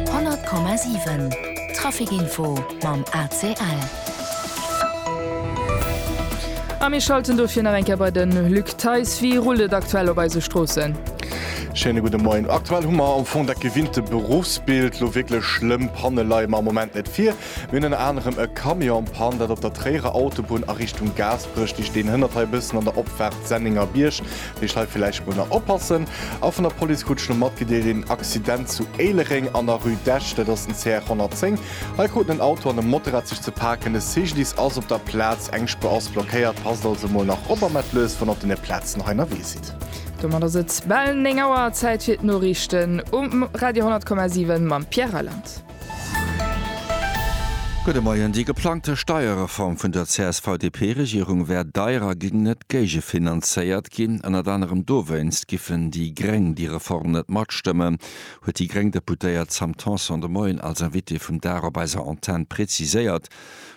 100,7 Trafic Info mam ACL. A mir schalten dofir nach eng Kéier bei den Luc Theis. Wéi rullt et aktuell op eise Stroossen? Schéine gudde Moien. Aktuell hu mer am Fong dat gewinnte Beruffsbild. Lo wierklech schlëmm Panne leie mer am Moment net vir. Mir hunn ënner anerem e Camion am Pann, dat op der Tréierer Autobunn a Richtung Gaasperech liicht. Deen hënnert hei e bëssen an der Opfaart Sennéngerbierg. Deech hei villäicht mol nach oppassen. A vun der Police krut ech lo mat, gedeelt, een Accident zu Éilereng an der Rue d'Esch. Dat ass den CR 110. Hei kruten en Auto an e Motorrad sech ze paken. De CGDIS ass op der Plaz. Eng Spuer ass blockéiert. Passt also mol nach op a mellt lues, wann der op deene Plazen hei ënnerwee sidd. Domat ass et bal 9 Auer. Zäit fir d'Noriichten um Radio 10,7 mam Pierre Reyland. Gudde Moien. Déi geplangte Steierreform vun der CSV-DP-Regierung wär deier a géing net géigefinanzéiert ginn. Ënnert anerem dowéinst giffen déi Gréng déi Reform net matstëmmen, huet déi gréng Deputéiert Sam Tanson de Moien als Invitée vum Dag op eiser Antenn preziséiert.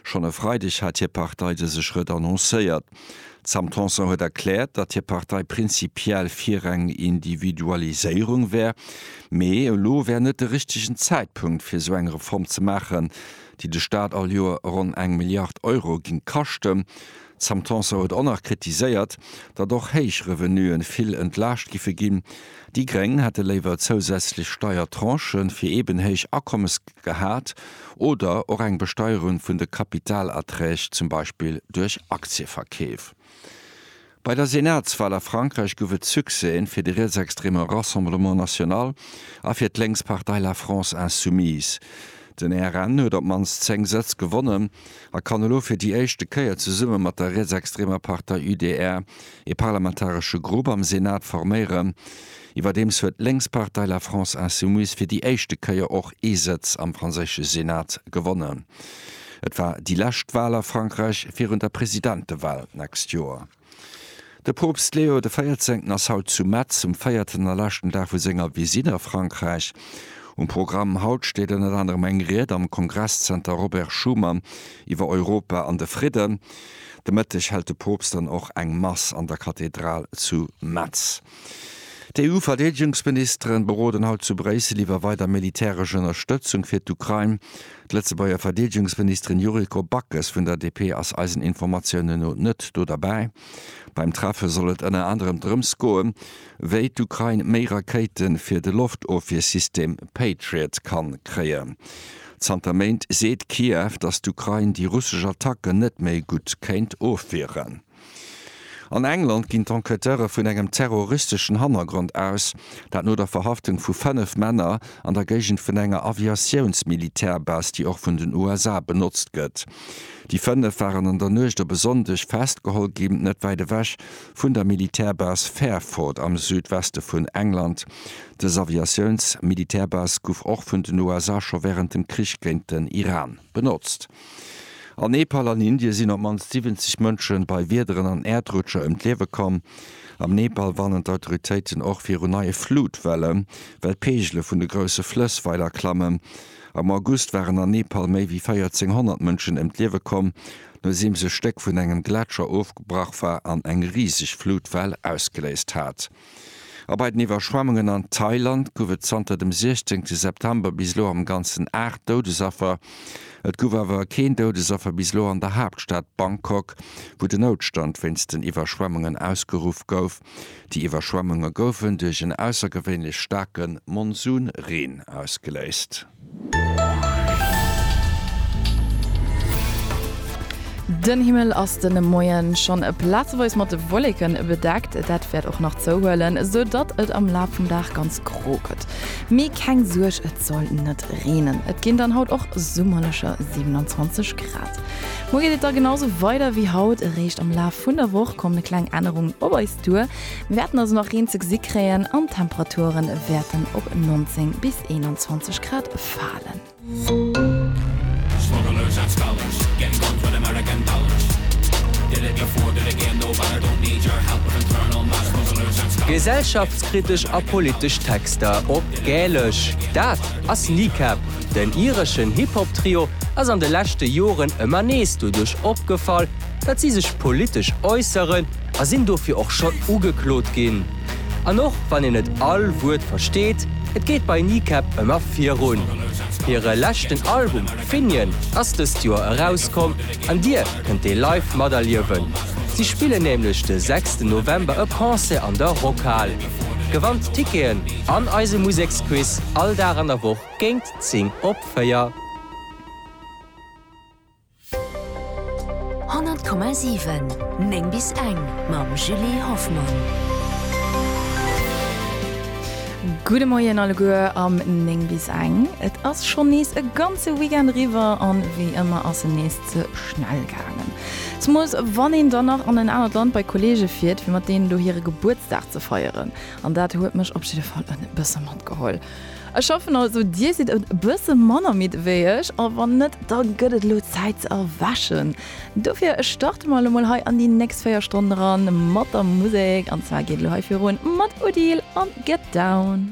Schonn e Freideg hat hir Partei dëse Schrëtt annoncéiert. D'Sam Tanson huet erkläert, datt hir Partei prinzipiell fir eng Individualiséierung wär, mee elo wär net de richtegen Zäitpunkt fir esou eng Reform ze maachen, déi de Staat all Joer ronn eng Milliard Euro géing kaschten. D'Sam Tanson huet och nach kritiséiert, datt och héich Revenue vill entlaascht giffe ginn, Déi Gréng hätte léiwer zousätzlech Steiertranchë fir eeben héich Akommes gehat oder och eng Besteierung vun de Kapitalerträg, zum Beispill duerch Aktieverkeef. Bei der Senatswal a Frankräich gouf et Succèsen fir de rietsextreme Rassemblement National a fir d'Lénkspartei La France Insoumise. Den RN huet op d'mannst 10 Sëtz gewonnen a kann elo fir déi éischte Kéier zesumme mat der rietsextremer Partei UDR ee parlamentaresche Grupp am Senat forméieren. Iwwerdeems huet d'Lénkspartei La France Insoumise fir déi éischte Kéier och ee Sëtz am franséische Senat gewonnen. Et war déi lescht Wal a Frankräich virun der Presidentewal d'nächst Joer. De Poopst Leo de Véierzéngten ass haut zu Metz um véierten a leschten Dag vu senger Visite a Frankräich. Um Programm haut steet ënnert anerem eng Ried am Kongresszenter Robert Schuman iwwer Europa an de Fridden. De Mëtteg hält de Poopst dann och eng Mass an der Kathedral zu Metz. D'EU-Verdeedegungsministeren beroden haut zu Bréissel iwwer weider militäresch Ënnerstëtzung fir d'Ukrain. D'Lëtzebuerger Verdeedegungsministerin Yuriko Backes vun der DP ass eisen Informatiounen no net do derbäi. Beim Treffe soll et ënner anerem drëms goen, wéi d'Ukrain méi Rakéite fir de Loftofwiersystem Patriot kann kréien. Zanter Méint seet Kiew, datt d'Ukrain déi russesch Attacken net méi gutt kéint ofwieren. An England ginn d'Enquêteure vun engem terroristeschen Hannergrond aus, dat no der Verhaftung vu 5 Männer an der Géigend vun enger Aviatiouns-Militärbase, déi och vun den USA benotzt gëtt. Déi 5 waren an der Nuecht op e Sonndeg festgeholl ginn, net wäit ewech vun der Militärbase Fairford am Südweste vun England. Dës Aviatiouns-Militärbase gouf och vun den USA scho wärend dem Krich géint den Iran benotzt. An Nepal an Indie sinn op d'mannst 70 Mënsche bei Wiederen an Äerdrutscher ëm d'Liewe komm. Am Nepal warnen d'Autoritéiten och viru neie Flutwellen, well d'Peegele vun de grousse Flëss weider klammen. Am August waren an Nepal méi wéi 1.400 Mënschen ëm d'Liewe komm, nodeems e Stéck vun engem Gletscher ofgebrach war an eng riseg Flutwell ausgeléist hat. A bei den Iwwerschwemmungen an Thailand gouf et zanter dem 16 September bis elo am Ganzen 8 Doudesaffer. Et gouf awer keen Doudesaffer bis elo an der Haaptstad Bangkok, wou den Noutstand wéinst den Iwwerschwemmungen ausgeruff gouf. Déi Iwwerschwemmunge goufen duerch en aussergewéinlech staarke Monsunreen ausgeléist. Den Himmel ass de Moien schonn plazeweis mat Wolleken bedeckt, dat wäert och nach zouhuelen, sou datt et am Laf vum Dag ganz gro gëtt. Mee keng Suerg, et soll net reenen. Et ginn dann haut och summerlecher 27 Grad. Muer geet et da genau sou weider wéi haut, eréischt am Laf vun der Woch kommen kleng Ännerungen op eis duer. Mir wäerten also nach Reen ze gesi kréien an d'Temperature wäerten op 19 bis 21 Grad falen. Gesellschaftskritesch a politesch Texter op Gälesch, dat ass Kneecap. Den ireschen Hip-Hop-Trio ass an de leschte Joren ëmmer nees doduerch opgefall, datt si sech politesch äusseren, a sinn dofir och schonn ugeklot ginn. An och wann een net all Wuert versteet, et geet bei Kneecap ëmmer virun. Hire leschten Album Finian ass dëst Joer erauskomm an Dir kënnt dee live materliewen. Si spillen nämlech de sechsten November e Concert an der Rockhal. Gewannt Ticketen an eise Museksquiz all Dag an der Woch géingt 10 op 4. 100,7 9 bis eng mam Julie Hoffmann. Gudde Moien alleguer am 9 bis eng. Et ass schonn nees e ganze Weekend riwwer an wéi ëmmer ass en nees ze schnell gaangen. Zemools wann een dann nach an en anert Land bei Kolleege fiert fir mat deenen do hire Gebuertsdag ze feieren. An dat huet mech op jidde Fall en bësse matgeholl. Ech hoffen also dir sidd e bësse manner midd wéi ech, a wann net, da gëtt et elo Zäit ze erwächen. Dofir starte mer elo mol hei an déi nächst 4 Stonnen eran mat der Musek, an zwar geet elo hei virun mat Odile an Get Down.